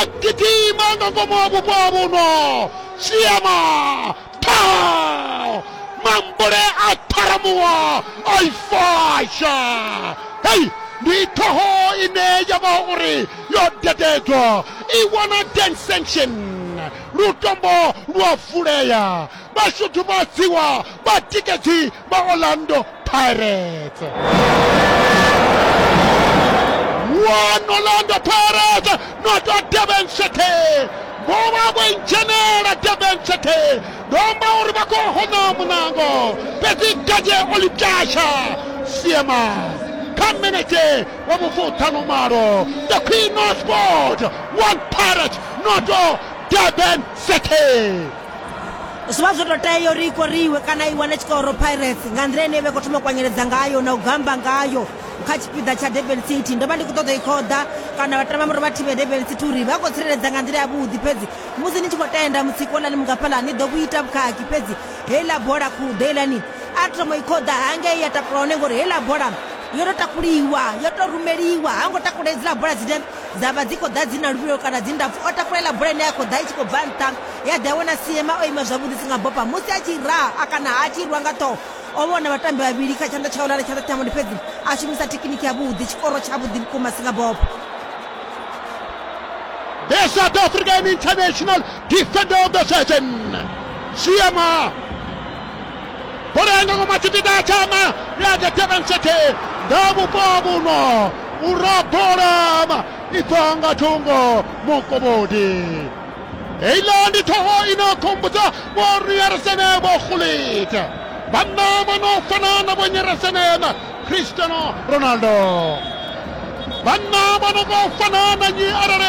akitima ngangomu wa vhupo ha vhuno siema ṱhaho mambule a ṱharamuwa a i fasha hei ndi ṱhoho ine ya vha uri yo dededzwa i wana ten sanction lutombo lwa vulea vhashudhumadziwa vhatikedzi vha Orlando Pirates. One Orlando Pirates not a Durban City. Vho vha vho dzhenela Durban City. Domba uri vha khou hona munango. Fhedzi Gaje Olitasha Siema kha minete wa vhufuṱhanu malo the queen of sport one pirate noto durban city zwi vha zwo tou tea uri i koriwe kana i wane tshikoro pirates nga nḓila ine i vha i khou thoma u kwanyeledza ngayo na u gamba ngayo kha tshipiḓa tsha durban city ndo vha ndi khou ṱoḓa i khoḓa kana vha tamba muri vha thivhe durban city uri vha khou tsireledza nga nḓila yavhuḓi fhedzi musi ni tshi khou tenda mutsiko lani mungafhaḽa ni ḓo vhuita vhukhakhi fhedzi heiḽa bola khuḓo heilani a thoma i khoḓa hangei ya takula hone ngori heiḽa bola yo tou takuliwa yo tou rumeliwa ha ngo takula hedziḽa bola dzine dza vha dzi khou ḓa dzi na luvhilo kana dzi ndapfu o takula iḽa bola ine ya khou ḓa i tshi khou bva nṱha ya ḓi a vhona Seema o ima zwavhuḓi si nga bopa musi a tshi raha a kana a tshi rwa nga ṱhoho o vhona vhatambi vhavhili kha tshanḓa tshaula na tshanḓa thamoni fhedzi a shumisa thekiniki ya vhuḓi tshikoro tsha vhuḓi vhukuma si nga bopa The South African international defender of the season Seema bola yanga ngoma tshipiḓa tshama ya the Durban City nga vhupo ha vhuno u rabola i bva nga thungo mukobodi Heiḽa ndi ṱhoho i no khumbudza vho Riyaresene vho Gullit vhanna vho no fana na vho Nyeresene na Cristiano Ronaldo vhanna vho no vho fana na nyi arali